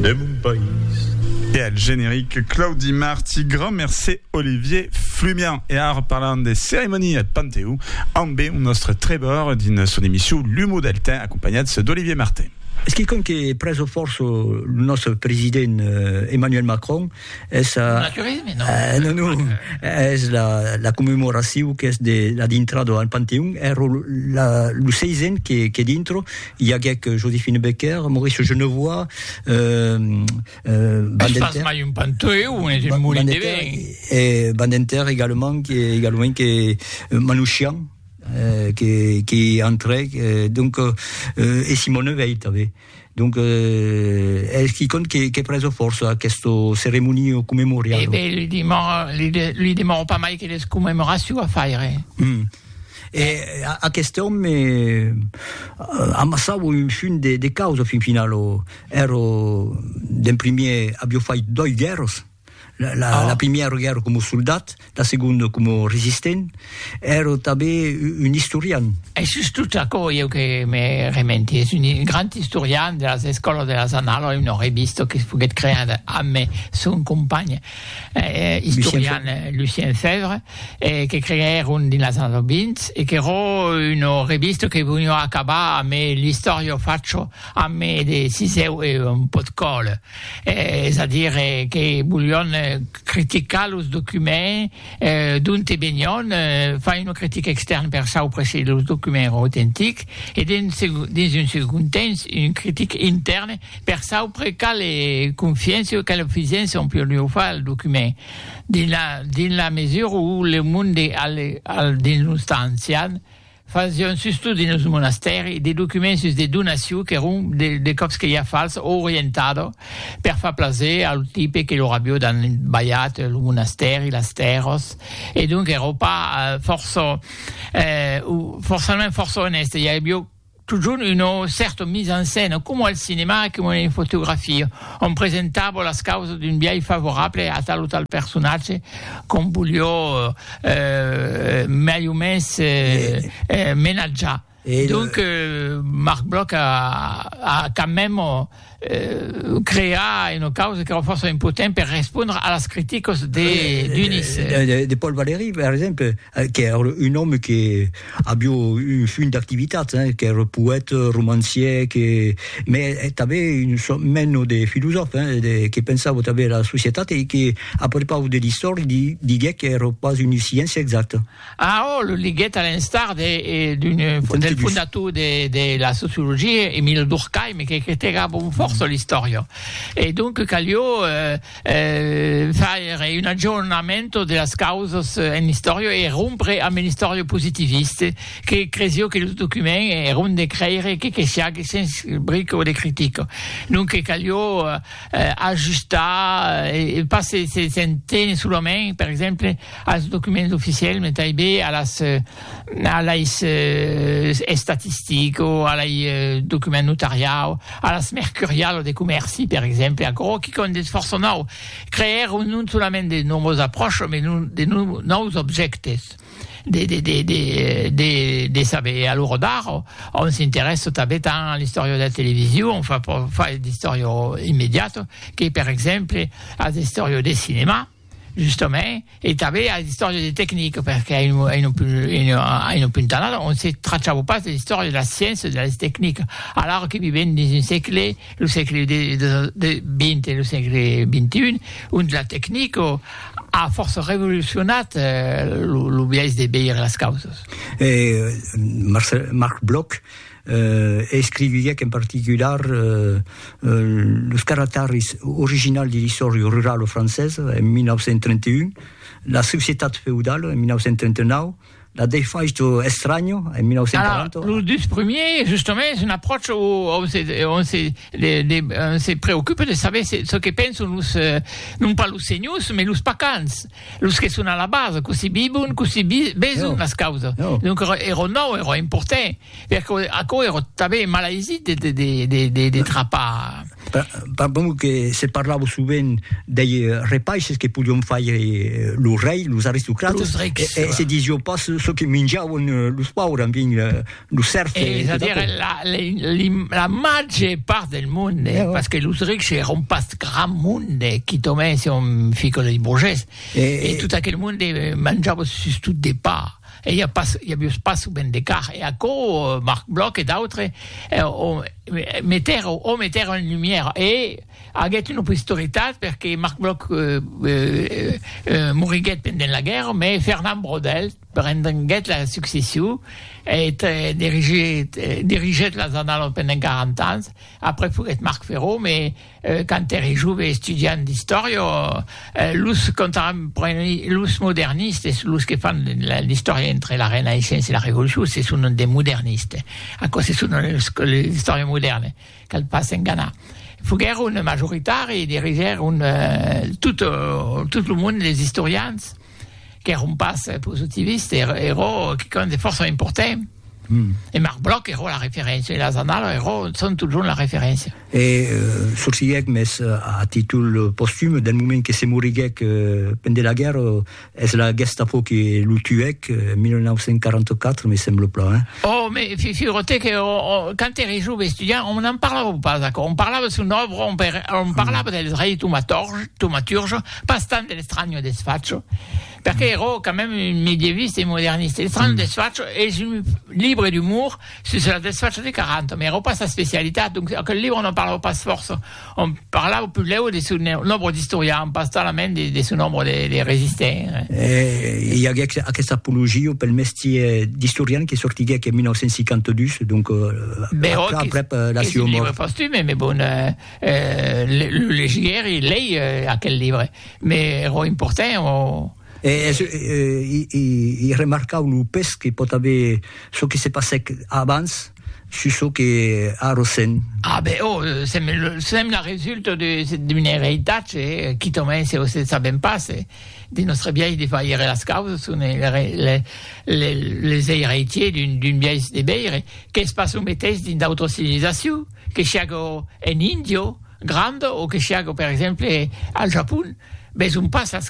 de mon país. E al generic, Claudi Marti, grand mercé Olivier Flumian. E ara parlam de ceremonia eth Panteó ambe un nòstre trèbor dins son emission L'humo del temps acompanhats d'Olivier Martin. Es quicòm que prèso fòrça lo nòstre president Emmanuel Macron. Es a... Naturisme, non? Eh, non, non. Es la, la commemoracion qu'es de la dintrada al Panteon. Ero la, lo seisen que, que dintro i aguec Josephine Becker, Maurice Genevois, euh, euh, Van den Terre... mai un Panteon, es un molin de vin. E Van den Terre également, que, également que Manouchian, eh, que, que entrèc, eh, donc, eh, e Simone Veit, tanben. Donc, eh, es quicon que, que preso força aquesto ceremonio commemorial. Eh ben, li demoro, li, de, li demoro pas mai que les commemorations a faire. Mm. E eh, aquest homme eh, amassava un fin de, de causa fin final. O, ero, d'en primier, avio fait doi guerras. La primièra guèrra coma soldat, la segonda coma resistent, èra tanben un istorian. Es just tot aquò ieu que me rementi, es un grand istorian de las escòlas de las Annales, una revista que foguèt creada amb son companh istorian Lucien Febvre, que creèron dins las annadas 20 e qu'èra una revista que voliá acabar amb l'istòria facha amb de sisèu e un pòt còla. es a dire que volion criticar los documents d'onte venion, far una critica extèrna per saupre se los documents èran autentics e dins un segond temps una critica intèrna per saupre quala confiança o quala fisença on podiá far al document dins la mesura où le monde al dins los temps ancians Fasión sustot dins lo monastèri de documents sus de donaciu qu'èron de còps que ja fals o orientada per far plaser a lo tipe que lor avió dan balhat lo monastèri, las tèrras e donc èra pas fòrça o forçament fòrça onèste, i avió totjorn una cèrta mise en scène coma al cinema, coma en fotografia. On presentavo las causas d'un biais favorable a tal o tal personatge qu'on volió mai o mens menatjar. Donc Marc Bloch a quand même creat una causa qu'èra fòrça important per respondre a las criticas de Dionís. De Paul Valéry, per exemple. Qu'ère un òme que avió un funt d'activitats, hein, qu'ère poète, romancier, que me tanben un sò meno de filosòf, hein, de que pensava tanben era societat e que a prepaus de l'istòria di, diguec qu'ère pas una sciéncia exacta. Ah, oh, lo liguèt a l'instar de d'un del fondator de de la sociologia, Emile Durkheim, que critegava fòrça l'istòria. E donc calió, euh, faire un aggiornamento de las causas en l'istòria e rompre amb l'istòria positivista que cresió que lo document èra ont de crèire que que siague sens brico de critica. Donque calió ajustar e pas se se se tenir solament, per exemple, als documents oficiels, mai tanben a las. alai estatistic o alai document notariau, alas mercurial o de comèrci, per exemple, aquò qui compte es fòrça nòu, creèr non solament de nòvas apròches, mai de nòus objèctes de saber. A l'ora d'ara, òm s'interèssa tanben tant a l'istòria de la television, enfin, pas d'istòria immediata, que per exemple a l'istòria de cinèma. Justament, e tanben as d'istòria de tecnic, perqué en un punt tan alt on se trachava pas de l'istòria de las sciéncias, de las tecnicas, alara que vivèm dins un sègle, lo sègle XX e lo sègle XXI, ont la tecnica a fòrça revolucionat lo biais de veire las causas. Marc Bloch, e escriviguèc en particular los caractaris originals de l'Istòria rurala francesa en 1931, La societat feudala en 1939, La defaixa estranya en 1940. Alara, los dus primièrs, justament, es un apròcha ont se, ont se, de, de, ont se preocupa de saber se, çò que penson los, non pas los senhors, mas los pacans. Los que son a la basa, cossí vivon, cossí veson las causas. Donc ero nau, ero important, perque aquò ero tanben malaisit de trapar. Pas bon que se parlava sovent dei repaisses que podion faire lo rei, los aristocrates, e se disiá pas çò que minjavan los paures, enfin, Lo cercle. Eh, és a dire, la, la, la màger part del monde, eh, parce que los rics èron pas grand monde, qui tomèn se un fico de burgès, eh, e tot aquel monde eh, manjava sus tot de pa. E hi, ha pas, hi havia pas ben de car. E aquò, eh, Marc Bloch e d'autres, eh, o, meter, o meter en lumière. E aguèt una posteritat, perque Marc Bloch eh, eh, eh, moriguèt pendent la guerra, mais Fernand Braudel, Prendenguèt la succession eth dirigit dirigèt las Annales pendent 40 ans, après foguèt Marc Ferro, me quand ère jove estudiant d'istòria, los contemporanis, los modernistes, los que fan l'istòria entre la Renaissença e la Revolucion se son des modernistes, aquò se son los que l'istòria modèrna, cal pas s'enganar, foguèron majoritari, dirigèron tot tot lo monde des istorians. qu'èron pas positivistes, èron quicòm de fòrça important. Mm. E Marc Bloch era la referéncia, e las annalas eran, son totjorn la referéncia. E euh, sorciguèc mès euh, a títol euh, postüm, del moment que se moriguèc euh, pendent la guerra, es la Gestapo que lo tuèc euh, 1944, me sembla plan. Hein? Oh, me figurate que oh, oh, quand era jove estudiant, on n'en parlava pas, on parlava son obra, on, on parlava mm. dels rei tomaturge, Pas tant de l'estranho desfacho, perque ero quand même un medieviste e moderniste. L'estranho desfacho es un libre d'umor sus la desfacho de Caranto, mai ero pas sa specialitat, donc aquel libre non parlava pas fòrça, on parlava pudlèu de son òbra d'istorian, pas talament de son òbra de resistent. E i aguec aquesta apologia pel mestier d'istorian que sortiguec en 1952, donc aprèp la siua mòrt. Bèu, qu'es un libre postume, mai bon, Lo legièri lei aquel libre, me ro importè o. I remarcau lo pes que pòt aver çò que se passèc abans sus çò que a ressent. A ben, o sèm la resulta d'un eritatge, quitament se o se sabèm pas, de nòstre biais de vaire las causas, son les eiratiers d'un biais de veire, qu'es pas lo meteis dins d'autras civilizacions. Que siágo en Índia granda o que siágo, per exemple, al Japon, ves un pas als